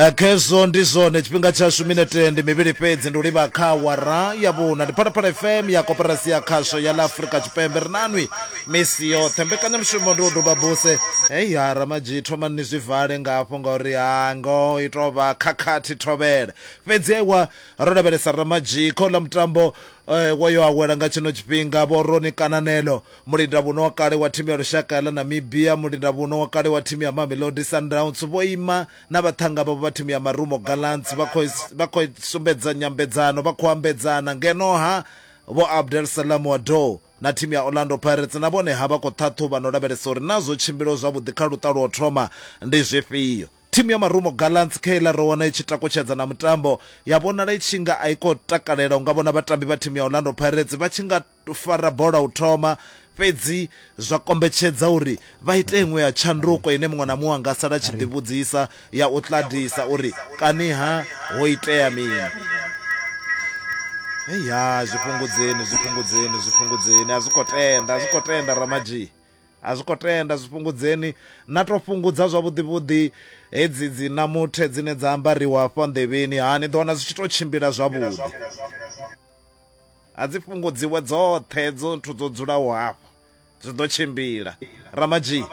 Eh, khezwo ndi zwone tshifhinga tshashu minete ndi mivhili fhedzi ndi u livha kha wara ya vhuna ndi phalaphala fm ya koperasi ya khasho ya ḽa afurika tshipembe ri nanwi misi yoṱhe mbekanyamushumo ndi u duba buse hei ha ramadzhi thomani ni zwi vale nga hafho ngauri ha ngo i tou vha khakhathi thovhele fhedzi ewa ro lavhelesa ramadzhi kho ḽa mutambo Wo yo awela nga tshino tshifhinga vho Ronnie Kananelo, mulindavhuno wa kale wa thimu ya lushaka ya ḽa Namibia, mulindavhuno wa kale wa thimu ya Mamelodi Sundowns vho ima na vhaṱhannga vhavho vha thimu ya Marumo Gallants vha khou vha khou sumbedza nyambedzano vha khou ambedzana ngeno ha Vho Abdel Salam Wadou na thimu ya Orlando Pirates na vhone ha vha khou ṱhaṱhuvha na u lavhelesa uri naa zwo tshimbilaho zwavhuḓi kha luṱa lwa u thoma ndi zwifhio. Thimu ya Marumo Gallants khe iḽa ro wana i tshi takutshedza na mutambo, ya vhonala i tshi nga a i khou takalela u nga vhona vhatambi vha thimu ya Orlando Pirates vha tshi nga fara bola u thoma, fhedzi zwa kombetshedza uri vha ite iṅwe ya tshanduko ine muṅwe na muṅwe a nga sala a tshi ḓivhudzisa, ya u ṱaḓisa uri kani-ha ho itea mini. Hei haa, zwi fhungudzeni, zwi fhungudzeni, zwi fhungudzeni, a zwi khou tenda, a zwi khou tenda Ramadzhii. A zwi khou tenda, zwi fhungudzeni. Na tou fhungudza zwavhuḓivhuḓi hedzi dzi namuthe dzine dza ambariwa hafha nḓevheni. Ha, ni ḓo wana zwi tshi tou tshimbila zwavhuḓi. A dzi fhungudziwe dzoṱhe hedzo nthu dzo dzulaho hafha, zwi ḓo tshimbila. Ramadzhii.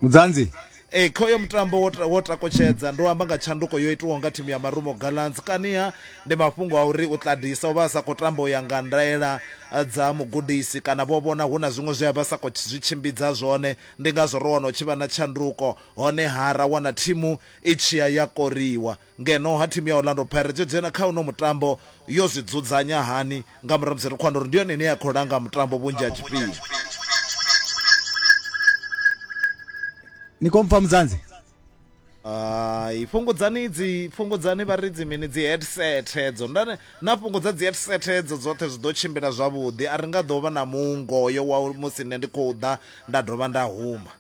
Mudzanzi, Ee, kha uyo mutambo wo, ta- wo takutshedza ndo amba nga tshanduko yo itiwaho nga thimu ya marumo gallants kaniha ndi mafhungo a uri u ṱadisa u vha a sa khou tamba u ya nga ndaela eh, dza mugudisi kana vho vhona hu na zwiṅwe zwe a vha sa khou tshi- zwi tshimbidza zwone ndi ngazwo ro wana u tshi vha na tshanduko honeha ra wana thimu i tshiya ya koriwa Ngeno ha thimu ya Orlando Pirates yo dzhena kha uno mutambo yo zwi dzudzanya hani nga murahu musi ri khou wana uri ndi yone ine ya khou langa mutambo vhunzhi ha tshifhinga. Ni khou mpfa Mudzanzi? Hai fhungudzani dzi fhungudzani vha ri dzi mini dzi headset hedzo ndane na fhungudza dzi headset hedzo dzoṱhe zwi ḓo tshimbila zwavhuḓi a ri nga ḓo vha na mungo yo wa musi nṋe ndi khou ḓa nda dovha nda huma.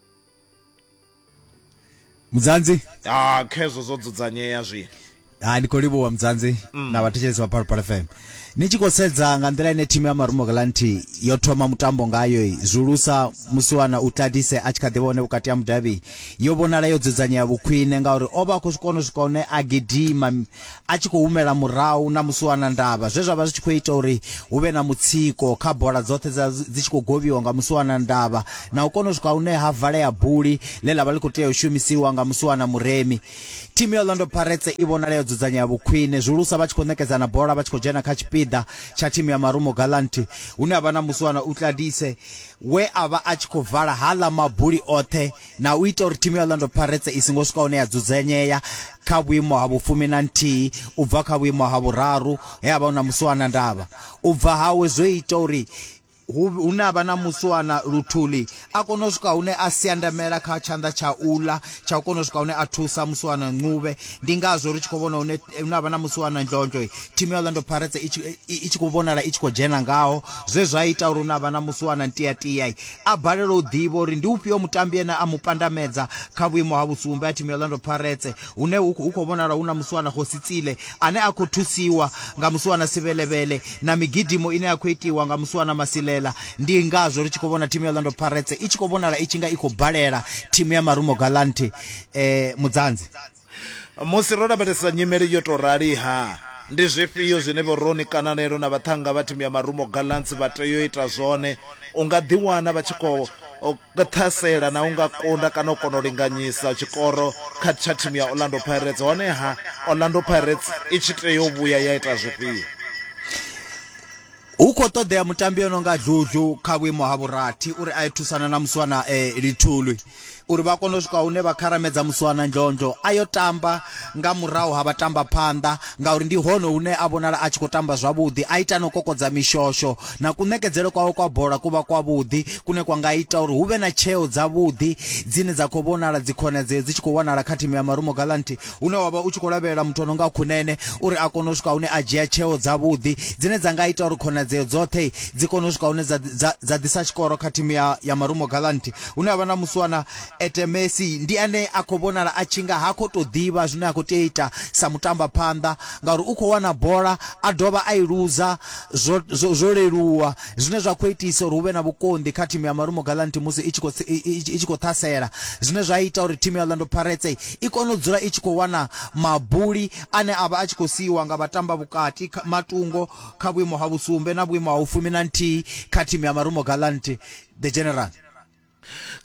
mudzanzi ah khezwo zwo dzudzanyea zwi ha ndi khou livhuwa mudzanzi mm. na vhathetshelesi vha phalaphala fm ni tshi khou sedza nga nḓila ine thimu ya marumo galanti yo thoma mutambo ngayo zwulusa musiwana u tladise a tshi kha ḓivha hone vhukati ha mudavhi yo vhonala yo dzudzanyea vhukhwine ngauri o vha a khou zwi kona u swika hune a gidima a tshi khou humela murahu na musi wana ndavha zwe zwa vha zwi tshi khou ita uri hu vhe na mutsiko kha bola dzoṱhe dza dzi tshi khou govhiwa nga musi wana ndavha na u kona u swika hune ha valea buli ḽe ḽa vha ḽi khou tea u shumisiwa nga musi wana muremi thimu ya Orlando Pirates i vhonala yo dzudzanyea vhukhwine zwihulusa vha tshi khou ṋekedzana bola vha tshi khou dzhena kha tshipiḓa tsha thimu ya Marumo Gallant hune ha vha na musi wana Utladise we a vha a tshi khou vala hala mabuli oṱhe na u ita uri thimu ya Orlando Pirates i songo swika hune ya dzudzanyea kha vhuimo ha vhufumi na nthihi u bva kha vhuimo ha vhuraru he a vha hu na musiwana ndavha u bva hawe zwo ita uri hu na vha na musiwana luthuli a kona u swika hune a siandamela kha tshanḓa tsha ula tsha u kona u swika hune a thusa musiwana ncube ndi ngazwo ri tshi khou vhona hune hu na vha na musiwana ndlondlo thimu ya Orlando Pirates i tshi khou vhonala i tshi khou dzhena ngaho zwe zwa ita uri hu na vha na musiwana ntiatia a balelwa u ḓivha uri ndi ufhio mutambi ene a mu pandamedza kha vhuimo ha vhusumbe a thimu ya Orlando Pirates hune hu khou vhonala hu na musiwana Khosi Tsile ane a khou thusiwa nga musiwana Sivhelevhele na migidimo ine ya khou itiwa nga musiwana Masilela ndi ngazwo ri tshi khou vhona thimu ya Orlando Pirates i tshi khou vhonala i tshi nga i khou balela thimu ya Marumo Gallant eh, Mudzanzi musi ro lavhelesa nyimele yo tou rali ha ndi zwifhio zwine vhoroni kananelo na vhaṱhanga vha thimu ya marumo gallants vha tea u ita zwone u nga ḓiwana vha tshi khou ṱhasela na u nga kunda kana u kona u linganyisa tshikoro kha tsha thimu ya orlando pirates honeha orlando pirates i tshi tea u vhuya ya ita zwifhio Hu khou ṱoḓea mutambi o no nga Dludlu kha vhuimo ha vhurathi uri a ye thusana na Muswana e, Lithulwi uri vha kone u swika hune vha kharamedza Muswana Ndlondlo a yo tamba nga murahu ha vhatambaphanḓa ngauri ndi hone hune a vhonala a tshi khou tamba zwavhuḓi, a ita na u kokodza mishosho na kuṋekedzele kwawe kwa bola ku vha kwavhuḓi kune kwa nga ita uri hu vhe na tsheo dzavhuḓi dzine dza khou vhonala dzikhonadzeo dzi tshi khou wanala kha thimu ya Marumo Gallants. hune wa vha u tshi khou lavhelela muthu o no nga khunene uri a kone u swika hune a dzhia tsheo dzavhuḓi dzine dza nga ita uri khonadzeo dzoṱhe dzi kone u swika hune dza, dza, dza ḓisa tshikoro kha thimu ya, ya marumo galanti hune a vha na musiwana etemesi ndi ane a khou vhonala a tshi nga ha khou tou ḓivha zwine a khou tea ita sa mutamba phanḓa ngauri u khou wana bola a dovha a i luza zwo, zwo, zwo leluwa zwine zwa khou itisa uri hu vhe na vhukonḓi kha thimu ya Marumo Gallants musi i tshi khou i tshi khou ṱhasela zwine zwa ita uri thimu ya Orlando Pirates i kone u dzula i tshi khou wana mabuli ane a vha a tshi khou siiwa nga vhatamba vhukati kha- matungo kha vhuimo ha vhusumbe na vhuimo ha u fumi na nthihi kha thimu ya Marumo Gallants the general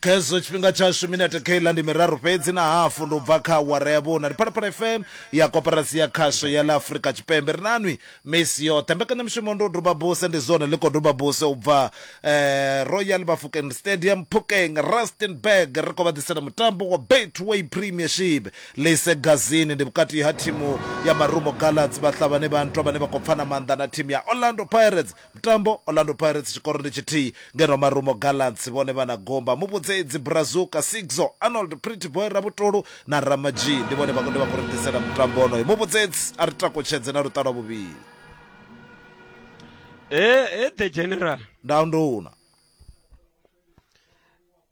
kha hezwo tshifhinga tshashu minete khaila ndi miraru fhedzi na hafu ndi u bva kha awara ya vhuna ndi phalaphala fm ya koperasi ya khasho ya ḽa afurika tshipembe ri nanwi misi yoṱhe mbekanyamushumo ndi u duba buse ndi zwone ḽi khou duba buse u bva eh, royal bafokeng stadium phokeng rustenburg ri khou vha ḓisela mutambo wa betway premiership lise gazini ndi vhukati ha thimu ya marumo galads vhahlabani vha ntwa vhane vha khou pfana maanḓa na thimu ya orlando pirates Mutambo, Orlando Pirates tshikoro ndi tshithihi, ngeno Marumo Gallants vhone vha na gumba. Muvhudzedzi, Brazuka, Sigzo, Arnold, Pretty Boy, Rabutolu na Ramajee ndi vhone vhakundi vha khou ri ḓisela mutambo wonoyo. Muvhudzedzi, A ri takutshedze na luṱa lwa vhuvhili. He, he, The General. Nda, Nduna.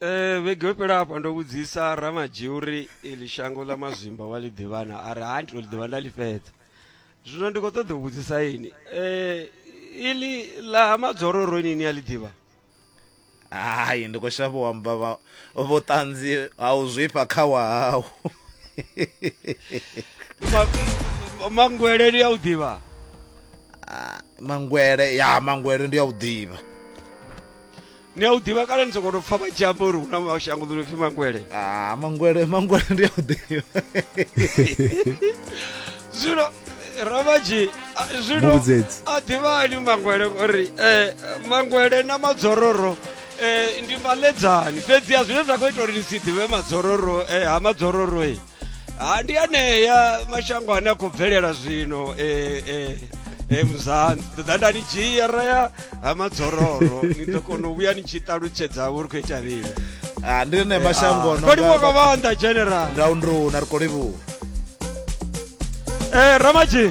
Eh vhege yo fhela hafha ndo vhudzisa ramadzhi uri ili shango ḽa mazwimba wa ḽi ḓivhana a ri ha ndi to ḽi ḓivha nda ḽi fhedza zwino ndi khou ṱoḓa u vhudzisa ini eh ili ḽa ha madzororo ini ni a ḽi ḓivha hai ndi khou shavha u amba vha- vhuṱanzi ha u zwifha kha wahau Ma- mangwele ni a u ḓivha mangwele ya mangwele ndi a u ḓivha ni a u ḓivha kale ni sokou tou pfa vha tshi amba uri hu na mashango ḓo no pfi mangwele ah, mangwele mangwele ndi a u ḓivha zwino ravaji zwino a ḓivhani mangwele uri um eh, mangwele na madzororo um ndi maledzani fhedzi a zwine zwa khou ita uri ni si ḓivhe madzororo um ha madzororo e ha ndi anea mashango ane a khou bvelela zwino eh, eh, eh, muzani ṱoḓa nda ni dzhia ra ya ha madzororo ni ḓo kona u vhuya ni tshi ṱalutshedza uri khou ita vhili Ah, ndi ne mashango no kolivhuwa nga mavanda general round rona ri kolivhuwa eh, ramaji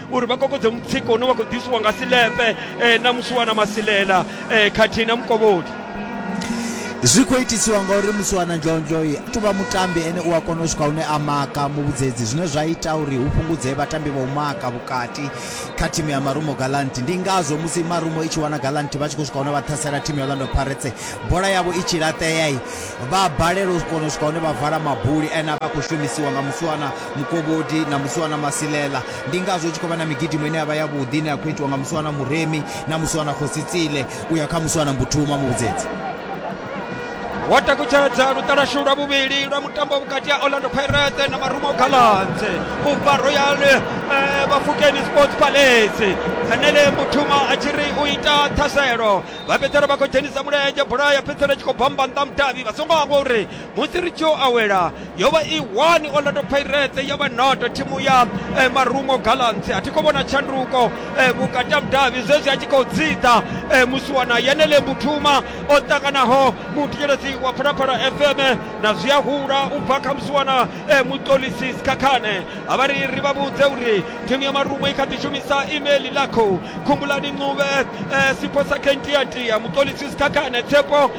uri vha kokodze mutsiko une wa khou ḓisiwa nga silepe eh, na musuwana masilela eh, khathihi na mukovholi zwi khou itisiwa ngauri musuwana njonjoi a tuvha mutambi ene u a kona u swika hune a maka muvhudzedzi zwine zwa ita uri hu fhungudzee vhatambi vha u maka vhukati kha thimu ya marumo galant ndi ngazwo musi marumo i tshi wana galant vha tshi khou swika hune vha ṱhasela thimu ya orlando paretse bola yavho i tshi laṱeai vha balelwa u kona u swika hune vha vala mabuli ene a vha khou shumisiwa nga musuwana Mukovhodi na Muswana Masilela. Ndi ngazwo hu tshi khou vha na migidimo ine ya vha yavhuḓi ine ya khou itiwa nga Muswana Muremi na Muswana Khosi Tsile u ya kha Muswana Mbuthuma Muvhudzedzi. Wo takutshedza luṱa lwashu lwa vhuvhili lwa mutambo vhukati ha Orlando Pirates na Marumo Gallants u bva Royal eh, Bafokeng Sports Palace. Henele Mbuthuma a tshi ri u ita ṱhaselo vha fhedzisela vha khou dzhenisa mulenzhe bola ya fhedzisela i tshi khou bamba nnḓa mudavhi vha songo hangwa uri musi ri tshi yo awela yo vha i 1 orlando pirates ya vha noto thimu ya eh, marungo galants a thi khou vhona tshanduko eh, vhukati ha mudavhi zwezwi a tshi khou dzidza eh, musiwana yenele mbuthuma o ṱanganaho muthetshelesi wa phalaphala fm na zwi a hula u bva kha musiwana eh, muṱolisi sikhakhane a vha ri ri vha vhudze uri thimu ya marungo i kha ḓi shumisa email lakho khumbulani ncube eh, sipho sa kentiatia muṱolisi sikhakhane tshepo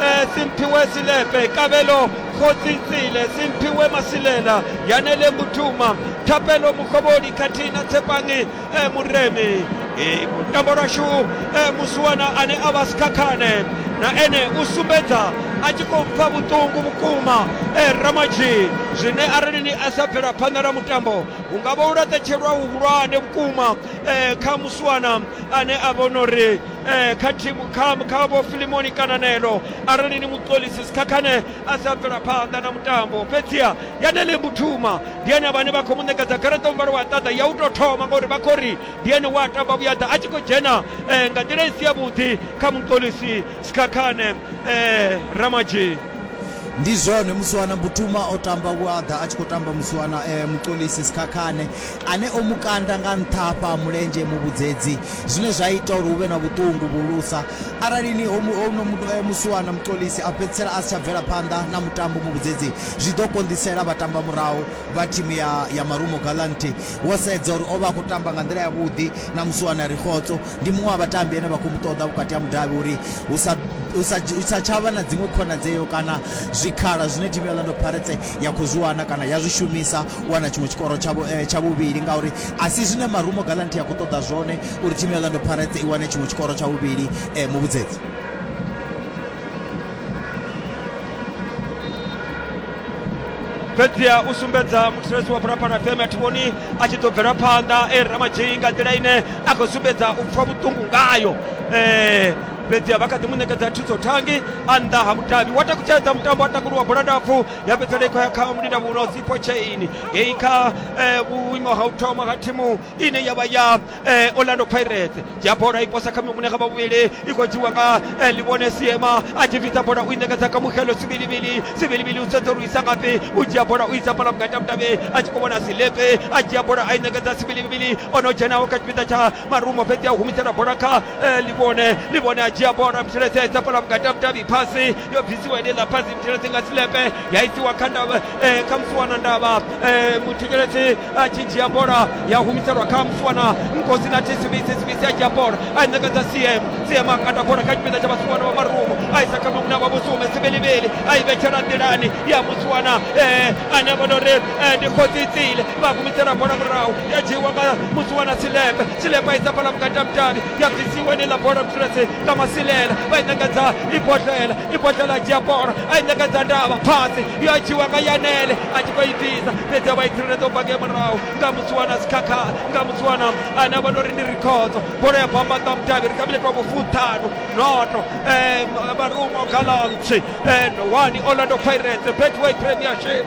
Eh, simphiwe silepe kabelo kgotsi tsele simphiwe masilela yanele mutuma thapelo mokgobodi khathina tshepange eh, moreme eh, tamborashu musuwana a ne a ba sikhakhane na ene u sumbedza a tshi khou pfa vhuṱungu vhukuma ramadzhi zwine arali ni a sa bvela phanḓa na mutambo hu nga vha u laṱetshelwa huhulwane vhukuma kha musuwana ane a vhona uri ee kha thimu kha kha vho filimoni kananelo arali ni muṱolisi sikhakhane a sa bvela phanḓa na mutambo fhedziha yanele mbuthuma ndi ene vhane vha khou mu ṋekedza garaṱa muvhala wa ṱaḓa ya u tou thoma ngauri vha khou ri ndi ene wa tamba vhuyaḓa a tshi khou dzhena um nga nḓila i si yavhuḓi kha muṱolisi sikhakhane um ramadzhini ndi zwone musiwana mbuthuma o tamba vhuaḓa a tshi khou tamba musiwana um muṱolisi sikhakhane ane o mu kanda nga nṱha hafha ha mulenzhe muvhudzedzi, zwine zwa ita uri hu vhe na vhuṱungu vhuhulusa. Arali ni ho no mu musiwana Mxolisi a fhedzisela a si tsha bvela phanḓa na mutambo muvhudzedzi, zwi ḓo konḓisela vhatambamurahu vha thimu ya ya Marumo Gallant. Wo sedza uri o vha a khou tamba nga nḓila yavhuḓi na musiwana Rikhotso, ndi muṅwe wa vhatambi ane vha khou mu ṱoḓa vhukati ha mudavhi uri hu sa hu sa hu sa tsha vha na dziṅwe khonadzeo kana zwikhala zwine thimu ya Orlando Pirates ya khou zwi wana kana ya zwi shumisa u wana tshiṅwe tshikoro tsha eh, tsha vhuvhili ngauri a si zwine marumo galanthi ya khou ṱoḓa zwone uri thimu ya orlando pirates i wane tshiṅwe tshikoro tsha vhuvhili eh, muvhudzedzi fhedzi u sumbedza muthetshelesi wa phalaphala fm a thi vhoni a tshi ḓo bvela phanḓa e ramadzhei nga nḓila ine a khou sumbedza u pfha vhuṱungu ngayo um fhedzi vha kha ḓi mu ṋekedza thuso thangi a nnḓa ha mudavhi wa takutshedza mutambo a takuluwa bola ndapfu ya fhedzisela i khou ya kha mulinda muhulwa sipo chain ngei kha eh, vhuimo ha u thoma ha thimu ine ya vha ya eh, orlando pirates dzhia bola i posa kha mune kha vhavhuvhili i khou dzhiwa nga eh, livhone siema a tshi bvisa bola u i ṋekedza kha mukhelo sivilivili sivilivili u sedza uri u isa ngafhi u dzhia bola u isa fhala vhukati ha mudavhi a tshi khou vhona silepe a dzhia bola a i ṋekedza sivilivili o no dzhenaho kha tshipiḓa tsha marumo fhedzi a humisela bola kha eh, livhone livhone a dzhia bola mtheletshedza bola vhukati ha vhudavhi phasi yo bvisiwa ine ḽa phasi mtheletshi nga silepe ya isiwa kha ndavha eh, kha musuwana ndavha eh, muthekeletshi a tshi dzhia bola ya humiselwa kha musuwana nkosi na thisivisi sivisi a dzhia bola a i ṋekedza cm cm a kanda bola kha tshipiḓa tsha vhasuwana vha marumo a isa kha mamuna vha vhusume sivhelivheli a i vhetshela nḓilani ya musuwana eh, ane a vhona uri eh, ndi khosi tsile vha gumisela bola murahu ya dzhiiwa nga musuwana silepe silepe isa bola vhukati ha mutavhi ya bvisiwa ine ḽa bola mutirasi nga masilela vha i ṋekedza ibodlela ibodlela a dzhia bola a i ṋekedza ndavha phasi yo dzhiiwa nga yanele a tshi khou i bvisa fhedzi a vha i tsireledza u bva nge murahu nga musuwana sikhakha nga musuwana ane a vha no ri ndi rikhodzo bola ya bamba nga mutavhi ri kha mileto wa vhufuṱhanu noto um, Marumo Gallants and one Orlando Pirates Betway Premiership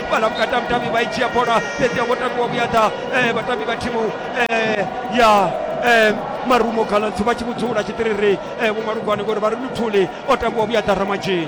balakukata mtambi baichia bona tetia botakuwa buyata eh, batambi ba timu eh, ya eh, marumo galansi ba chibudzula chitiriri eh, bumarugwane gore bari luthuli otambuwa buyata ramaji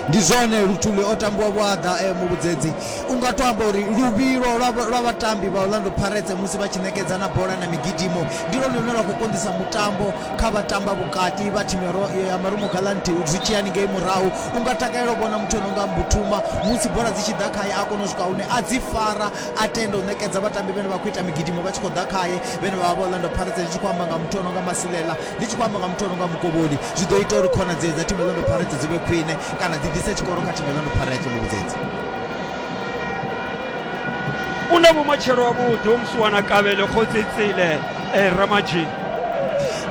ndi zwone luthuli o tambiwa vhuaḓa e muvhudzedzi u nga to amba uri luvhilo lwa- lwa vhatambi vha orlando pirates musi vha tshi ṋekedza na bola na migidimo ndi lwone lune lwa khou konḓisa mutambo kha vhatamba vhukati vha thimu ya Ro- ya marumo galanti zwi tshiyani ngei murahu U nga takalela u vhona muthu o no nga Mbutuma musi bola dzi tshi ḓa khae a kona u swika hune a dzi fara a tenda u ṋekedza vhatambi vhane vha khou ita migidimo vha tshi khou ḓa khae vhane vha vha vha Orlando Pirates. Ndi tshi khou amba nga muthu o no nga Masilela, ndi tshi khou amba nga muthu o no nga Mukovholi, zwi ḓo ita uri khonadzeo dza thimu ya Orlando Pirates dzi vhe khwine kana dzi ḓise tshikoro kha thimu ya Orlando Pirates, Muvhudzedzi. U na vhumatshelo havhuḓi, u musiwanakavhele, Khosi Cele. Eh, Ramaji.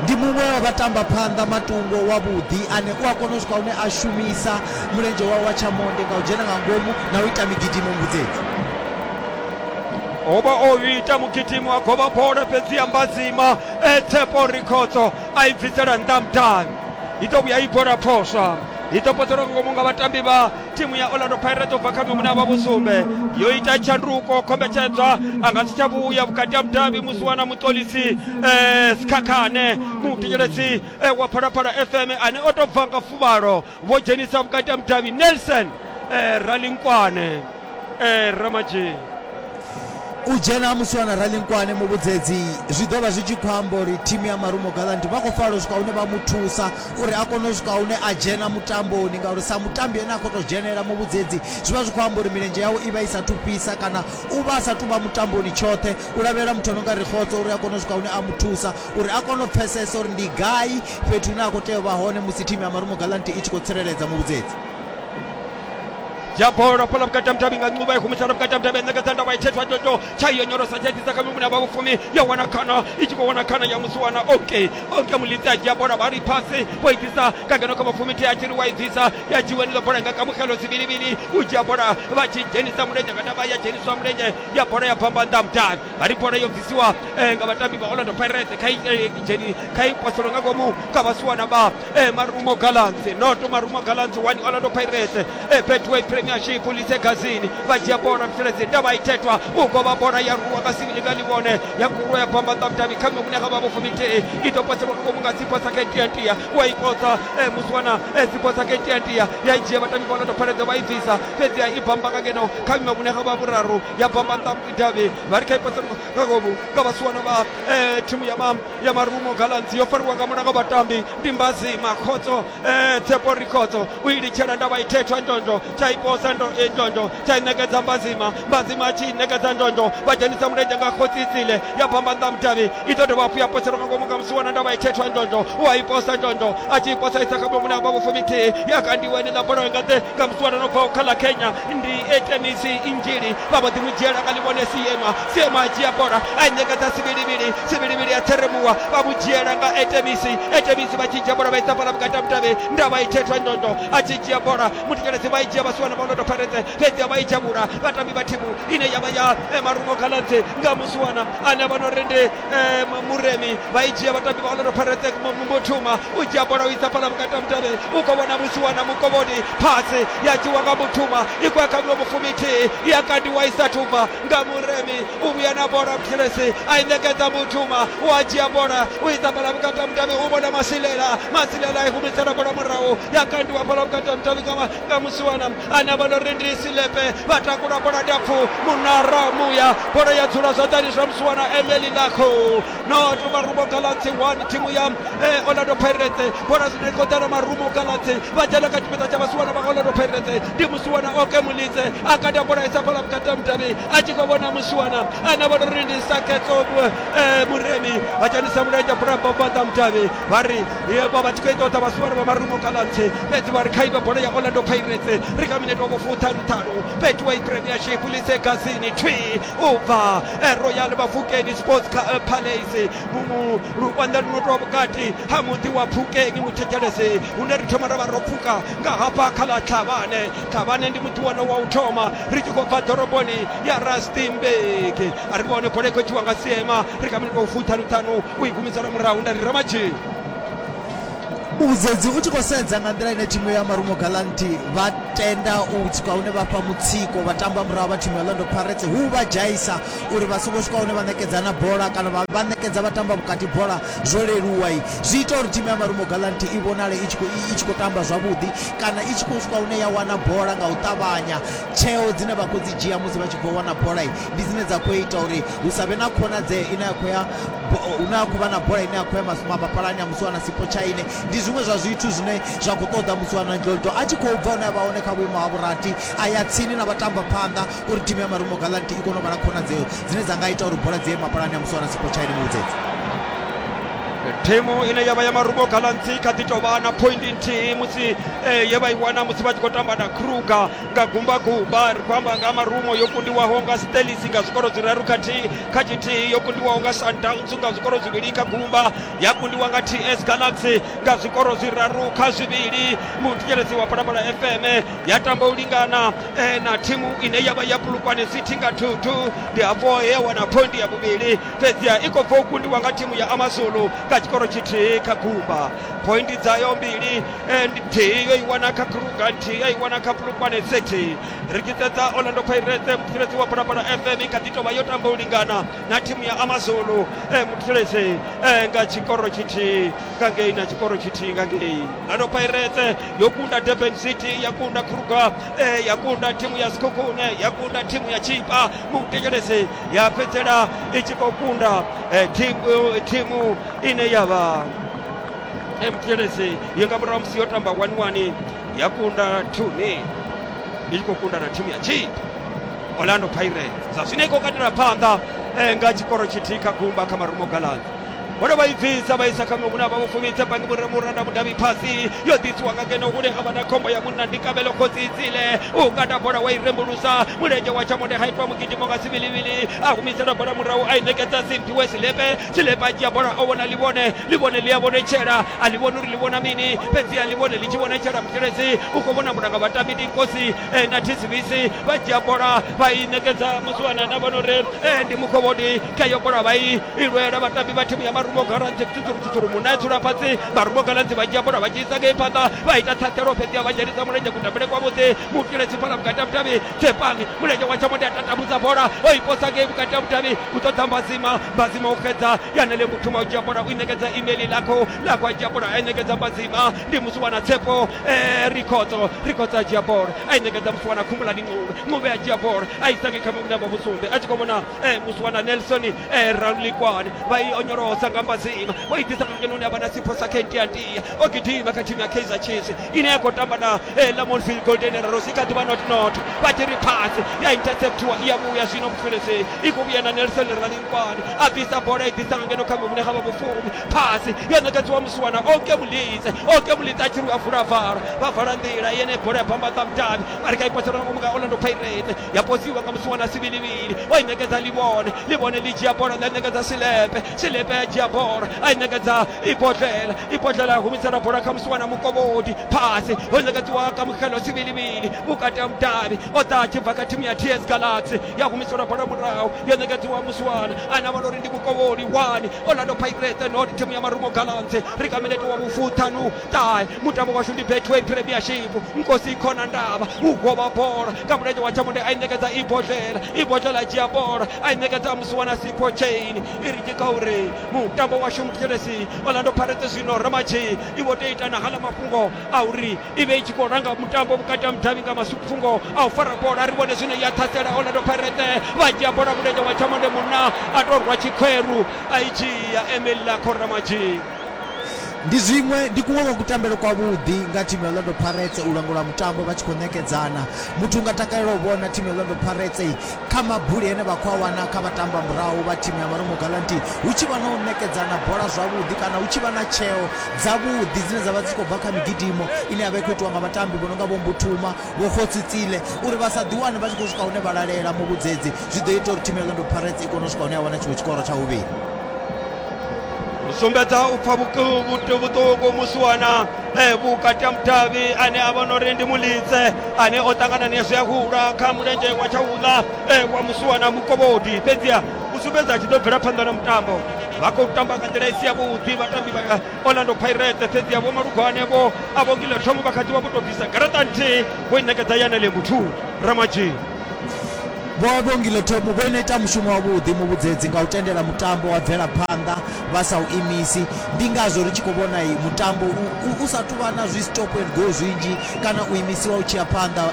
ndi muṅwe wa vhatamba phanḓa matungo wavhuḓi ane u a kona u swika hune a shumisa mulenzhe wawe wa tshamonde nga u dzhena nga ngomu na u ita migidimo mbudzedzi oba o ita mugidimi wa govha bola fhedzi ya mbadzima etsepo rikhotso a i bvisela nnḓa mudani i ḓo vhuya i bola phoswa i ḓo potelwa ngomu nga vhatambi vha thimu ya orlando pirates ubva kha mimuna vha vhusumbe yo ita tshanduko khombetshedzwa a nga si tsha vhuya vhukati ha mudabi musi wana muṱolisi eh, sikhakhane muthetshelesi eh, wa phalaphala fm ane o tou bva nga fuvhalo vho dzhenisa vhukati ha mudabi nelson eh, ralinkwane eh, ramadzhini u dzhena ha musiwana ralinkwane muvhudzedzi zwi ḓo vha zwi tshi khou amba uri thimu ya marumo galanti vha khou falo swika hune vha mu thusa uri a kone u swika hune a dzhena mutamboni ngauri sa mutambi ene a khou tou dzhenelela muvhudzedzi zwi vha zwi khou amba uri milenzhe yawe i vha i sa thu fhisa kana u vha a sa tu vha mutamboni tshoṱhe u lavhelela muthu ano nga ri khotso uri a kone u swika hune a mu thusa uri a kone u pfesesa uri ndi gai fhethu hune a khou tea u vha hone musi thimu ya marumo galanti i tshi khou tsireledza muvhudzedzi yabhora phola vhukati ha muthavhi nga ncuva i humisela vhukati ha muthavhi enekeza ndavha itshethwa toto tsha iyo nyorosa tsha itisa kha mimuna vha vhufumi yo wana khana i tshi khou wana khana ya musi wana oke oke mulidzi a dzhia bola vha ri phasi vho itisa ka ngeno kha vhafumi thi a tshi ri wa idzisa ya dzhiwa niḽo bola nga kamukelo zwivhilivhili u dzhia bola vha tshi dzhenisa mulenzhe kana vha ya dzheniswa mulenzhe ya bola ya bvamba nnḓa mudavhi ari bola yo bvisiwa eh, nga vatambi va orlando pirate kha i- eh, i dzheni kha i poselo nga ngomu kha vhasiwana vha eh, marumo gallants noto marumo gallants wani orlando pirates eh, betway premiership lise gazini vha dzhia bola mfeledzi ndavha ithethwa u govha bola ya ruwa nga sivili nga ḽivhone ya kurwa ya bamba ṱa vhudavhi kha muṅwe muṋe kha vha vhofumi nthihi i ḓo poselwa nga ngomu nga dziposa kha itiatia wa i posa eh, musiwana eh, dziposa kha itiatia ya i dzhia vhatambi vha orlando pirates vha i bvisa fhedzi ya i bamba nga ngeno kha muṅwe muṋe kha vha vhuraru ya bamba ṱa davhi vha ri kha ipasa nga ngomu nga vhasiwana vha eh, thimu ya ma ya marumo galanzi yo fariwa nga mulanga vhatambi ndi mbazi makhotso eh, tsepo rikhotso u i litshela ndavha i thethwa ndonzho tsha iposa ndo- eh, ndonzho tsha i ṋekedza mbazima mbazima a tshi i ṋekedza ndonzho vha dzhenisa mulenzhe nga khotsi isile ya bamba nnḓa mudavhi i ḓo dovha hafhu ya poselwa nga ngomu nga musiwana ndavha i thethwa ndonzho u a iposa ndonzho a tshi iposa isa kha bomuni hafha vhufumi thihi ya kandiwa ene ḽa bola nga ḓe nga musiwana no bvaho kha ḽa kenya ndi etenisi injili vha vho ḓi mu dzhiela nga ḽivhone siema siema a dzhia bola a ṋekedza sivhilivhili sivhilivhili a theremuwa vha mu dzhiela nga etenisi etenisi vha tshi dzhia bola vha isa fhala vhukati ha mutavhe nda vha i thetha ndondo a tshi dzhia bola mutikeledzi vha i dzhia vha suwana maonoto pharetse fhedzi a vha i dzhavhula vhatambi vha thimu ine ya vha ya eh, marungo khaladzi nga musuwana ane vha no ri ndi Eh, mu- muremi vha i dzhia vhatambi vha orlando pirates mu- mu- muthuma u dzhia bola u isa fhala vhukati ha mutale u khou vhona musi wana mukovhoni phasi ya dzhiwa nga muthuma i khou ya kha miṅwe mufumi ithihi ya kandiwa i sathu bva nga muremi u vhuya na bola muthelesi a i ṋekedza muthuma u a dzhia bola u isa fhala vhukati ha mutale u vhona masilela masilela i humisela bola murahu ya kandiwa fhala vhukati ha mutale nga ma- nga musiwana anavha lorendi silepe vha takula bola ndapfu munara muya bola ya dzula zwanḓani zwa musuwa na emeli lakho not marumo galatsi one thimu ya eh, orlando pirates bola zwino i khou ḓa na marumo galatsi vha dzhena kha tshipiḓa tsha vhasiwana vha orlando pirates ndi musiwana oke mulidze a kata bola isa fhala vhukati ha mudavhi a tshi khou vhona musiwana anavha lorendi saketso eh, muremi a dzhenisa mulenzhe bulamba fhaṱa mudavhi vha ri vha vha tshi khou i ṱoḓa vhasuvhalo vha marungo kha lantse fhedzi vha ri kha ive bola ya orlando pirates ri kha minete wa vhofuṱhanu ṱhanu fhethu wa ipremiership lise gasini twi u bva eh, royal vhafukeni sports eh, palace mumu luvhanda luno tou vhukati ha muḓi wa pfukeni muthetshelesi hune ri thoma ra vha ro pfuka nga hafha kha ḽa tlhavhane tlhavhane ndi muḓi wone wa u thoma ri tshi khou bva ḓoroboni ya rustenburg a ri vhone bola i khou tshiwa nga siema ri kha minete wa vhofuṱhanu ṱhanu u i gumedzela murahu nda ri ramadzhei vhudzedzi u tshi khou sedza nga nḓila ine thimu ya marumo galanti vha tenda u swika hune vha fha mutsiko vha tamba murahu vha thimu ya lando parets hu vha dzhaisa uri vha songo swika hune vha ṋekedza na bola kana vha ṋekedza vha tamba vhukati bola zwo leluwa zwi ita uri thimu ya marumo galanti i vhonale i tshi khou tamba zwavhuḓi kana i tshi khou swika hune ya wana bola nga u ṱavhanya tsheo dzine vha khou dzi dzhia musi vha tshi bva wana bola ndi dzine dza khou ita uri hu sa vhe na khonadzeo ine ya khou ya hune a khou vha na bola ine a khou ya masuma mapalani a musiwana sipo tshaine ndi zwiṅwe zwa zwithu zwine zwa khou ṱoḓa musiwana ndoldo a tshi khou bva hune a vha hone kha vhuimo ha vhurati a ya tsini na vhatamba phanḓa uri thimu ya marumo galanti i kone u vha na khonadzeo dzine dza nga ita uri bola dzi ye mapalani a musiwana sipo tshaine muvhudzedzi thimu ine yavha ya marumo galanti kha ḓi tovha na point nthihi musi eh, ye vha i wana musi vha tshi khou tamba na kruger nga gumbagumba ri khou amba nga marumo yo kundiwaho nga stelis nga zwikoro zwiraru khathihi kha tshithihi yo kundiwaho nga sundowns nga zwikoro zwivhili kha gumba ya kundiwa nga ts galaxy nga zwikoro zwiraru kha zwivhili muthetshelesi wa phalaphala fm ya tamba u lingana eh, na thimu ine ya vha ya pulukwane city nga thuthu ndi hafho he ya wana phondi ya vhuvhili fhedziha i khou bva u kundiwa nga thimu ya amazulu nga tshikoro tshithihi kha gumba pointi dzayo mbili and nthihi yo i wana kha kruga nthihi ya i wana kha pulukwane city ri tshi sedza orlando pirates mutsireledzi wa phalaphala fm kha ḓi tovha yo tamba u lingana na thimu ya amazulu eh, mutsireledzi eh, nga tshikoro tshithihi nga ngei na tshikoro tshithihi nga ngei orlando pirates yo kunda durban city ya kunda kruga eh, ya kunda thimu ya skukune ya kunda thimu ya chipa mutekeledzi ya fhedzela i tshi khou kunda eh, thimu, thimu ine ya vha mtls yo nga murahu musi yo tamba wani wani ya kunda tuni i tshi khou kunda na thimu ya chi orlando pirates zwa zwino i khou katela phanḓa eh, nga tshikoro tshithihi kha gumba kha marumo galani vhone vha i bvisa vha isa kha muṅwe hune a vha vho fumisa bangi vhure muranda mudavhi phasi yo ḓisiwa nga ngeno hune ha vha na khombo ya munna ndi kabelo khotsi itsile u kata bola wa i rembulusa mulenzhe wa tshamode ha itwa mugidimo nga sivilivili a humisela bola murahu a i ṋekedza simphiwe silepe tshilepa dzhia bola o vhona ḽivhone ḽivhone ḽi a vhonetshela a ḽi vhoni uri ḽi vhona mini fhedzi a ḽivhone ḽi tshi vhonetshela muteledzi u khou vhona mulanga vhatambi ndi nkosi eh, na thisivisi vha dzhia bola vha i ṋekedza muswana na vhona uri eh, ndi mukhovhodi kha yo bola vha i ilwela vhatambi vha thimu ya marumo galanzi tsutsuru tsutsuru munna ya dzula fhasi marumo galanzi vha dzhia bola vha dzhiisa ngei phanḓa vha ita ṱhaṱhelo fhedzi a vha dzhenisa mulenzhe kutambele kwavhuḓi muteledzi fhala vhukati ha vhutavhi kepangi mulenzhe wa tshamondi a tatamudza bola o i posa ngei vhukati ha vhudavhi u ṱoḓa mbazima mbazima u xedza yanele muthu ma u dzhia bola u i ṋekedza imeli lakho lakho a dzhia bola a i ṋekedza mbazima ndi musi wana tsepo eh, rikhotso rikhotso a dzhia bola a i ṋekedza musi wana khumulani ṅuve ṅuve a dzhia bola a i sange kha mavhune a vha vhusumbe a tshi khou vhona eh, musi wana nelson eh, ralulikwane vha i onyolosa nga mbazima vho i ḓisa kha ngeno une a vha na sipho sa kentiantia o gidima kha thimu ya kaizer chiefs ine ya khou tamba na Eh, lamontville golden arrows i kha ḓi vha not not vha tshi ri phasi ya interceptiwa i ya vhuya zwino mufilesi i khou vhuya na nelson ralinkwane a bvisa bola i ḓisa ngeno kha muvhune ha vha vhufumi phasi yo ṋekedziwa musiwana oke mulitse oke mulitse a tshi ri a vula vhala vha vala nḓila yene bola ya bambaḓa mudavhi vha ri kha i pasela ngomu nga orlando pirates ya posiwa nga musi wana sivhilivhili o i ṋekedza livhone livhone ḽi dzhia bola ḽa ṋekedza silepe silepe ya dzhia bola a i ṋekedza ibodlela ibodlela ya humisela bola kha musi wana mukovhodi phasi ho ṋekedziwa kamukelo sivhilivhili vhukati ha mudavhi o ḓa a tshi bva kha thimu ya ts galaxy ya humiselwa bola murahu yo ṋekedziwa musiwana a na vhalori ndi mukovholi wani orlando pirate not thimu ya marumo galaxy ri kameleti wa vhufuthanuu ṱahe mutambo washu ndi betway premiership nkosi i khona ndavha u govha bola nga mulenzhe wa tshamundi a i ṋekedza i bodlela i bodlela a dzhia bola a i ṋekedza a musi wana sipho chain i ri tshika uri mutambo washu muthelesi orlando pirates zwino ramatshi i vho tea ita na hala mafhungo a uri i vhe i tshi khou langa mutambo vhukati ha mudavhi nga masufhungo a u fara bola ri vhone zwino ya ṱhasela orlando pirates vha dzhia bola mulenzhe wa tshamundi munna a tou rwa tshikhweru a i dzhia emil lakho ramatshi Ndi zwiṅwe, ndi kuṅwe kwa kutambele kwavhuḓi nga thimu ya Orlando Pirates, u langula mutambo vha tshi khou ṋekedzana. Muthu u nga takalela u vhona thimu ya Orlando Pirates kha mabuli ane vha khou a wana kha vhatambamurahu vha thimu ya Marumo Gallants hu tshi vha na u ṋekedzana bola zwavhuḓi kana hu tshi vha na tsheo dzavhuḓi dzine dza vha dzi tshi khou bva kha migidimo ine ya vha i khou itiwa nga vhatambi vho no nga Vho Mbuthuma, Vho Kgosi Tsile uri vha sa ḓiwane vha tshi khou swika hune vha lalela muvhudzedzi zwi ḓo ita uri thimu ya Orlando Pirates i kone u swika hune ya wana tshiṅwe tshikoro tsha vhuvhili. sumbedza u pfa vhuku- vhutu- vhuṱuku musi wana eh, vhukati ha mudavhi ane a vhona uri ndi mulidze ane o ṱangana nezwi a hula kha mulenzhe wa tsha uḽa eh, wa musi wana mukovhodi fhedziha u sumbedza a tshi ḓo bvela phanḓa na mutambo vha khou tamba nga nḓila i si yavhuḓi vhatambi vha orlando pirate fhedziha vho malugwane vho a vho ngila thomo vha kha ḓi vha vho tou bvisa garaṱa nthihi vho i ṋekedza yanele muthu ramadzhini Vho vha vho Ngilothemu vho no ita mushumo wavhuḓi muvhudzedzi nga u tendela mutambo wa bvela phanḓa vha sa u imisi. Ndi ngazwo ri tshi khou vhona mutambo u sa tou vha na zwi stop and go zwinzhi kana u imisiwa u tshi ya phanḓa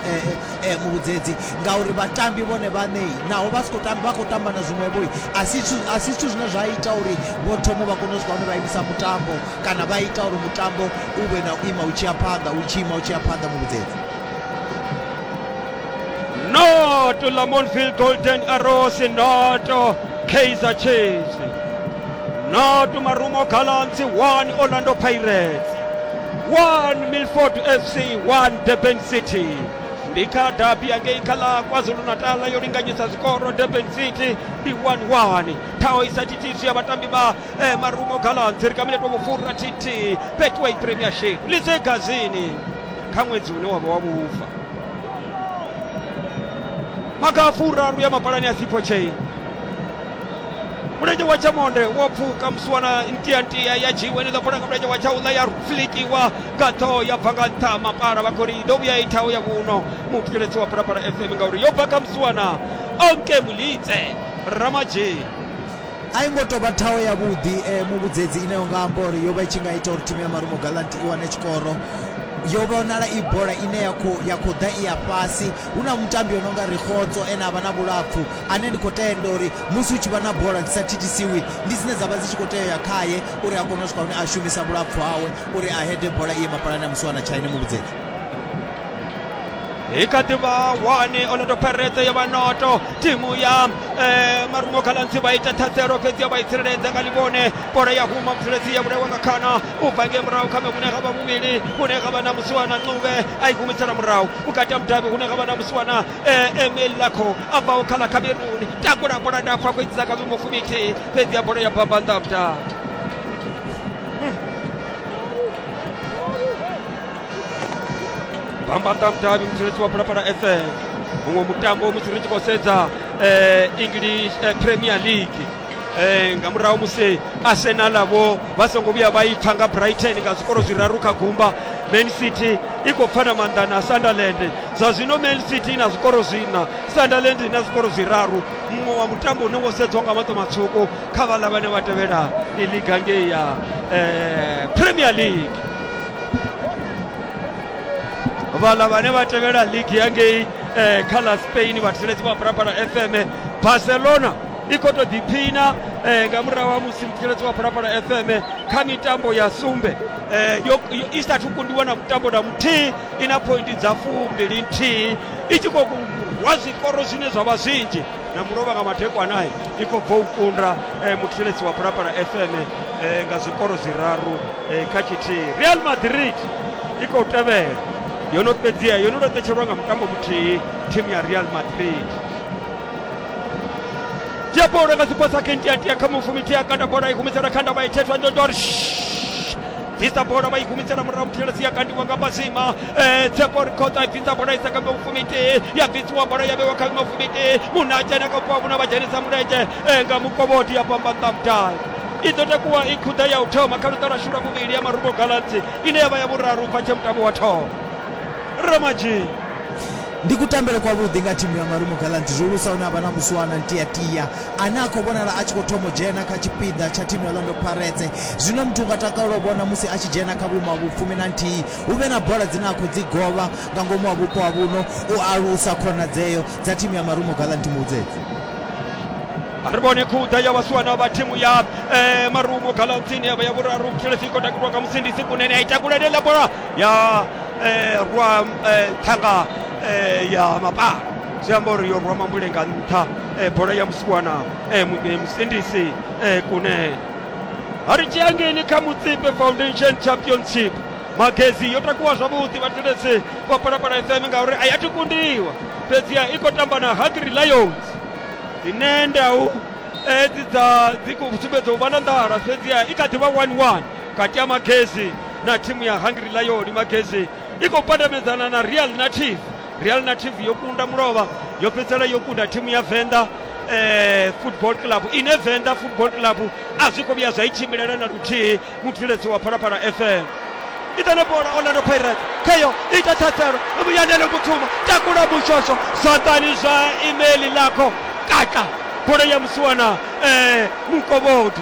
muvhudzedzi ngauri vhatambi vhone vhaṋe naho vha si khou tamba vha khou tamba na zwiṅwevho a si a si zwithu zwine zwa ita uri vho thomo vha kone u swika hune vha imisa mutambo kana vha ita uri mutambo u vhe na u ima u tshi ya phanḓa u tshi ima u tshi ya phanḓa muvhudzedzi. noto lamontville golden arrows noto kaizer chiefs noto marumo gallants 1 orlando pirates 1 milford fc 1 durban city ndi kha dabi yangei kha la kwazulu-natal yo linganyisa zikoro durban city ndi 11 thaho isatitiso ya vhatambi vha eh, marumo gallants ri kha miletwa vhufhura tt betway premiership lize gazini kha ṅwedzi une wavha wa vhufa maga a furaru ya mapalani a thipo chain mulenzhe wa tshamonde wo pfuka musiwana ntiantia ya dzhiwa ine ḓa funa nga mulenzhe wa tshaula ya flikiwa nga ṱhoho ya bva nga nṱha mapala vha khori ḓo vhuya ithaho ya vhuno muthikeledzi wa phalaphala fm ngauri yo bva kha musiwana onke mulitse ramadzheni A i ngo tou vha thaho yavhuḓi eh, muvhudzedzi ine yo nga amba uri yo vha i tshi nga ita uri thimu ya Marumo Gallant i wane tshikoro yo vhonala i bola ine ya khou ya khou ḓa i ya fhasi hu na mutambi o no nga rikgotso ene a vha na vhulapfu ane ndi khou tenda uri musi hu tshi vha na bola dzi sa thithisiwi ndi dzine dza vha dzi tshi khou tea u ya khaye uri a kone u swika hune a shumisa vhulapfu hawe uri a hede bola i ye mapalani a musiwana tshaine muvhudzedzi hi ka ti va wani orlando pirates ya va noto timu ya eh, marungo khalansi va ita thatsero fhedzi ya va yi tsireledza nga livhone bola ya huma muthelesi ya vhulaiwa nga khana u bva nge murahu kha mevhune ga vha muvhili hune ga vha na musiwana ncube a i humisela murahu vhukati ha mudavhi hune ga vha na musiwana eh, emil lakho a bvaho kha la cameroon takula bola ndapfu a khou idzisa ka vhimo fumi ithihi fhedzi ya bola ya bamba nḓa ha mudavhi bambanda mudavhi mutsireledzi wa phalaphala fm muṅwe mutambo musi ri tshi khou sedza eh, english eh, premier league eh, nga murahu musi arsenal vho vha songo vhuya vha ipfa nga brighton nga zwikoro zwiraru kha gumba man city i khou pfana maanḓa na sunderland zwa zwino man city i na zwikoro zwina sunderland i na zwikoro zwiraru muṅwe wa mutambo une wo sedzwa nga maṱo matswuku kha vhaḽa vhane vha tevhela i liga ngei ya eh, premier league vhala vhane vha tevhela ligi ya ngei eh, kha ḽa spain vhatheledzi vha phalaphala fm barcelona i khou tou ḓiphina eh, nga murahu ha musi mutheledzi wa phalaphala fm kha mitambo ya sumbe eh, yo, yo, i sathu kundiwa na mutambo na muthihi i na pointi dza fumbili nthihi i tshi khou rwa zwikoro zwine zwa vha zwinzhi na mulovha nga madekwana i khou bva u kunda eh, muthetshelesi wa phalaphala fm eh, nga zwikoro zwiraru eh, kha tshithihi real madrid i khou tevhela yo no fhedzia yo no laṱetshelwa nga mutambo muthihi thimu ya real madrid dzhia bola nga zwiposa kentiatia kha mufumi tia kanda bola i humisela kha ndavha i thethwa ndondor bvisa bola vha i humisela murahu muthelesi ya kandiwa nga mazima eh, tsepo rikhotsa i bvisa bola i sa kha mufumiti ya bvisiwa bola ya vhewa kha mufumiti munna a dzhena kha vhupo havhuna vha dzhenisa mulenzhe eh, nga mukovhodi ya pamba nṱamdai i ḓo takuwa i khuḓa ya u thoma kha luṱa lwashu lwa vhuvhili ya marubo galansi ine ya vha ya vhuraru bva tshe mutambo wa thoma ramadzhini ndi kutambele kwavhuḓi nga thimu ya marumo galanti zwihulusa hune a vha na muswana ntiatia ane a khou vhonala a tshi khou thoma u dzhena kha tshipiḓa tsha thimu ya Orlando Pirates. Zwine muthu u nga takalela u vhona musi a tshi dzhena kha vhuimo ha vhufumi na nthihi, hu vhe na bola dzine a khou dzi govha nga ngomu ha vhupo ha vhuno u alusa khonadzeo dza thimu ya Marumo Gallants Muhudzedzi. A ri vhone khuḓa ya vhasiwana vha thimu ya eh, Marumo Gallants ine ya vha ya vhuraru Mutshilesi i khou takuliwa nga Musindisi Kunene a i takula ḽa bola ya eh, rwa eh, ṱhanga eh, ya mapala zwi amba uri yo rwa mambule nga nṱha e, bola ya musibwana e, mu- e, musindisi e, kune ari chiyangeni kha mutsipe foundation championship magezi yo takuwa zwavhuḓi vhathetshelesi vha palapala fm ngauri a ya thi kundiwa fhedziha i khou tamba na hungry lions dzine ndau edzi dza dzi khou sumbedza u vha na nḓala fhedziha i kha ḓi vha 11 kati ya magezi na thimu ya hungry lion magezi i khou pandamedzana na real native Real Native yo kunda mulovha yo fhedzisela yo kunda thimu ya Venḓa eh, football club ine Venḓa football club a zwi khou vhuya zwa i tshimbilela na luthihi mubveledzi wa phalaphala fm idana bola orlando pirates khayo ita thathelo vhuyanele vhuthuma takula mushosho zwanḓani zwa imeli lakho kaka bola ya musiwana eh, mukovhodi